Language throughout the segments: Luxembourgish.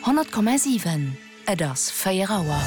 Honnert Komma siwen, Et ass 4 Auer.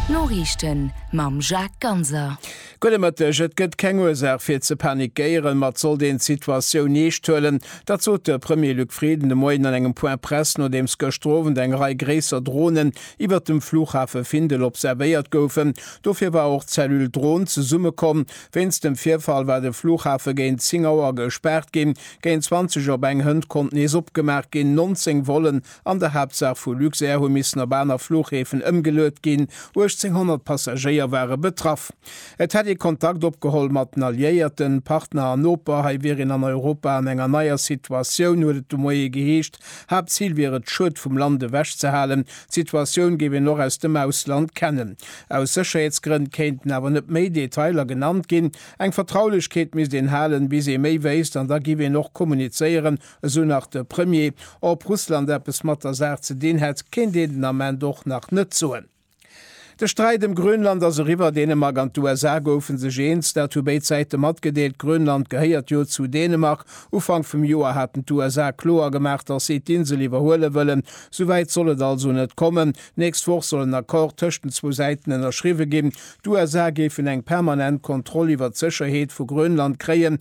D'Noriichten mam Jacques Ganser. Gudde Mëtteg. Et gëtt keng Ursaach fir ze panikéieren, ma et sollt een d'Situatioun eescht huelen. Dat sot de Premier Luc Frieden de Moien an engem Point presse, nodeems gëschter Owend eng Rei gréisser Dronen iwwert dem Flughafe Findel observéiert goufen. Dofir war och d'Cellule Dron zesummekomm. Wéinst dem Virfall war de Flughafe géint 10 Auer gespaart ginn. Géint 20 op eng Hënt konnt nees opgemaach ginn. 19 Vollen An der Haaptsaach vu Luxair hu missen op aner Fluchhäfen ëmgeluet ginn. 1.800 Passagéier ware betraff. Et hätt ee Kontakt opgeholl mat den Alliéierten, Partner an Noper. Hei wier een an Europa an enger neier Situatioun, huet et de Moie geheescht. Haaptzil wier et, d'Schued vum Land ewech ze halen. D'Situatioun géif een och aus dem Ausland kennen. Aus Sécherheetsgrënn kéinten awer net méi Detailer genannt ginn. Eng Vertraulechkeet misst een halen, bis ee méi wéisst, an da giff een och kommunizéieren, Esou nach de Premier. Ob Russland eppes mat der Saach ze dinn hätt, kéint een den Ament och nach net soen. De Sträit ëm Grönland ass eriwwer. Dänemark an d'USA goufe sech eens, dat hu béid Säite matgedeelt. Grönland gehéiert jo zu Dänemark. Ufank vum Joer haten d'USA kloer gemaach, datt si d'Insel iwwerhuele wëllen. Sou wäit soll et also net kommen. D'nächst Woch soll en Accord tëscht den zwou Säiten ënnerschriwwe ginn. D'USA géifen eng permanent Kontroll iwwer d'Sécherheet vu Grönland kréien,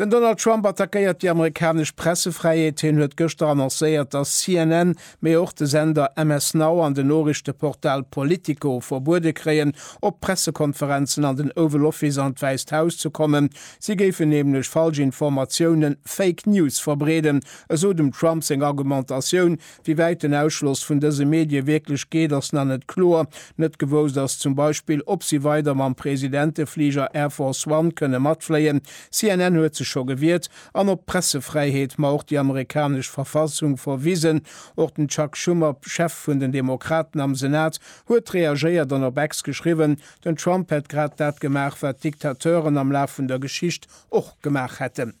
Den Donald Trump attackéiert déi amerikanesch Pressefräiheet. Hien huet gëschter annoncéiert, datt CNN, mee och de Sender MS Now an den Noriichteportal Politico verbuede kréien, op Pressekonferenzen an den Oval Office an d'Wäisst Haus ze kommen. Si géifen nämlech falsch Informatiounen, Fake News, verbreeden, esou dem Trump seng Argumentatioun, Wéi wäit den Ausschloss vun dëse Medie wierklech geet, ass nach net kloer. Net gewousst ass zum Beispill, ob si weider mam Presidentefliger Air Force One kënne matfléien, CNN huet sech scho gewiert, an op d'Pressefräiheet, ma och déi amerikanesch Verfassung verwisen. Och den Chuck Schumer, Chef vun den Demokraten am Senat, huet reagéiert an op X geschriwwen, den Trump hätt grad dat gemaach, wat Diktateuren am Laf vun der Geschicht och gemaach hätten.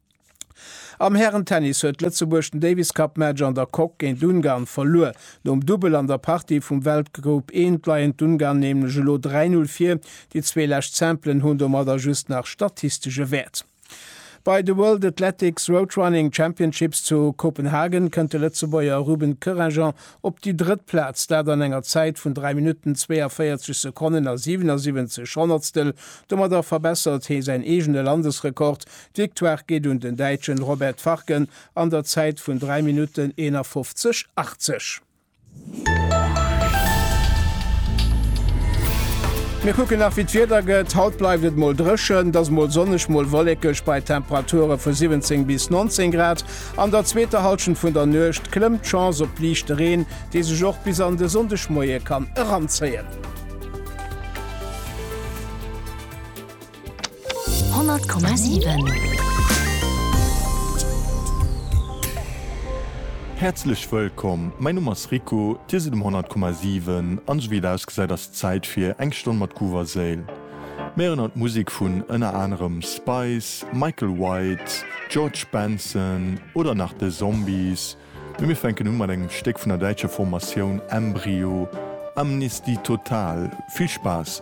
Am Hären-Tennis huet Lëtzebuerg den Davis-Cup-Match an der Coque géint Ungarn verluer. Nom Dubbel an der Partie vum Weltgroup I leien d'Ungarn nämlech elo 3-0 vir. Déi zwee lescht Simpelen hunn domadder just nach statistesche Wäert. Bei de World Athletics Road Running Championships zu Kopenhagen kënnt de Lëtzebuerger Ruben Koeranger op déi drëtt Plaz, dat an enger Zäit vun 3 Minutten 42 Sekonnen a 77 Honnertstel. Domadder verbessert hee säin eegene Landesrekord D'Victoire geet un den Däitschen Robert Farken an der Zäit vun 3 Minutten 51 80. Mir kucken nach wéi d'Wieder gëtt. Haut bleift et mol dréchen, et ass mol sonneg, mol wollekeg bei Temperature vu 17 bis 19 Grad. An der zweeter Hallschent vun der Nuecht klëmmt d'Chance op liichte Reen, dee sech och bis an de Sonndegmoie kann eranzéien. Häerzlech wëllkomm, mäin Numm ass Rico, dir sidd um 100,7 an esou wéi et ausgesäit ass et Zäit fir eng Stonn mat Groove a Séil. Mir erënnern d'Musek vun ënner anerem Spice, Michael White, George Benson oder nach The Zombies, mee mir fänken u mat engem Stéck vun der däitscher Formatioun Embryo, Amnesty Total. Vill Spaass!